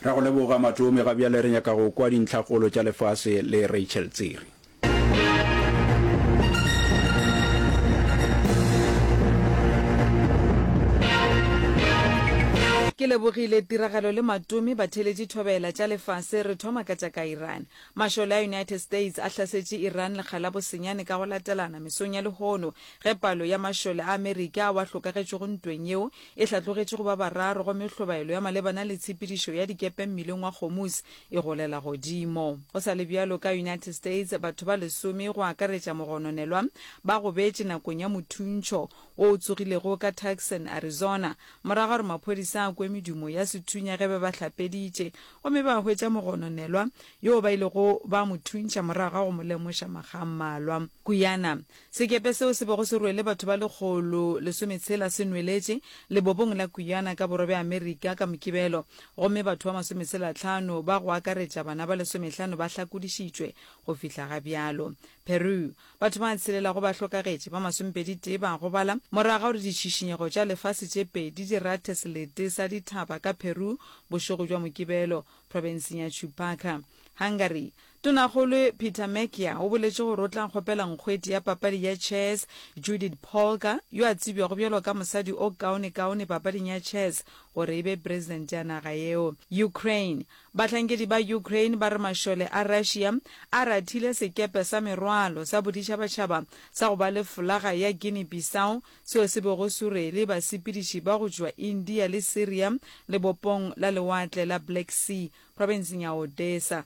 Ra go leboga Matome, ga bjale re nyaka go kwa dintlhakgolo tša lefase le Rachel Tsiri. Ke lebogile Tiragalo le Matome ba theletše thobela tša lefase. Re thoma ka tša ka Iran. Mašole a United States a hlasetše Iran lekga la bosenyane ka go latelana mesong ya lehono ge palo ya mašole a Amerika ao a hlokagetšego ntweng yeo e hlatlogetše go ba bararo gomme hlobaelo ya malebana le tshepedišo ya dikepe mmileng wa Hormuz e golela godimo. Go sa le bjalo, ka United States batho ba lesome go akaretša mogononelwa ba gobetše nakong ya mothuntšho wo o tsogilego ka Tucson, Arizona, morago ga gore maphodisa a kwe medumo ya sethunya ge ba ba hlapeditše gomme ba hwetša mogononelwa yo ba ilego ba mo thuntšha morago ga go mo lemoša makga a mmalwa. Guyana, Sekepe seo se bego se rwele batho ba lekgolo lesometshela se nweletše lebobong la Guyana ka borwa bja Amerika ka Mokibelo, gomme batho ba masometshelatlhano, ba go akaretša bana ba lesomehlano ba hlakodišitšwe go fihla ga bjalo. Peru, Batho ba tshelela go ba hlokagetše ba masomepeditee ba gobala morago ga gore ditšhišinyego tša lefase tše pedi di rathe selete sa dithaba ka Peru bošego bja Mokibelo, profenseng ya Chupaca. Hungary, Tonakgolo Peter Macchia o boletše gore o tla kgopela nkgweti ya papadi ya chess Judith Polgar, yo a tsebjago bjalo ka mosadi o kaonekaone papading ya chess, gore e be presidente ya naga yeo. Ukraine Bahlankedi ba Ukraine ba re mašole a Russia a rathile sekepe sa merwalo sa boditšhabatšhaba sa go ba le folaga ya Guinea-Bissau seo se bego se rwele basepediši ba go tšwa India le Syria lebopong la Lewatle la Black Sea profenseng ya Odesa.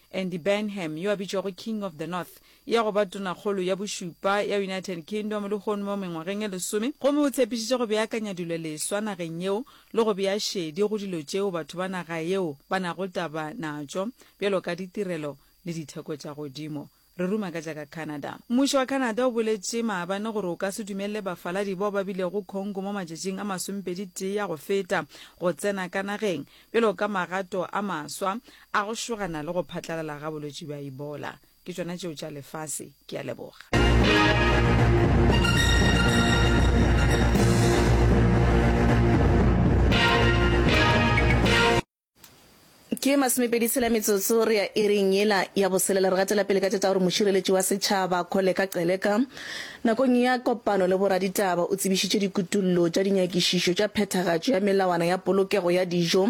Andy Burnham, yo a bitšwago King of the North, ya go ba Tonakgolo ya Bošupa ya United Kingdom lehono mo mengwageng e lesome, gomme o tshepišitše go beakanya dilo leswa nageng yeo le go bea šedi go dilo tšeo batho ba naga yeo ba nago taba natšo, bjalo ka ditirelo le ditheko tša godimo. Re ruma ka tša ka Canada. Mmušo wa Canada o boletše maabane gore o ka se dumelele bafaladi bao ba bilego Congo mo matšatšing a masomepedi-tee a go feta go tsena ka nageng, Bjalo ka magato a maswa a go šogana le go phatlalala ga bolwetši bja Ebola. Ke tšona tšeo tša lefase. Ke a leboga. Ke masomepedi tshela metsotso re ya iring yela ya boselela. Re gatela pele ka tša tša gore Mošireletši wa Setšhaba Kholeka Qeleka Nakong ya kopano le boraditaba o tsebišitše dikutollo tša dinyakišišo tša phethagatšo ya melawana ya polokego ya dijo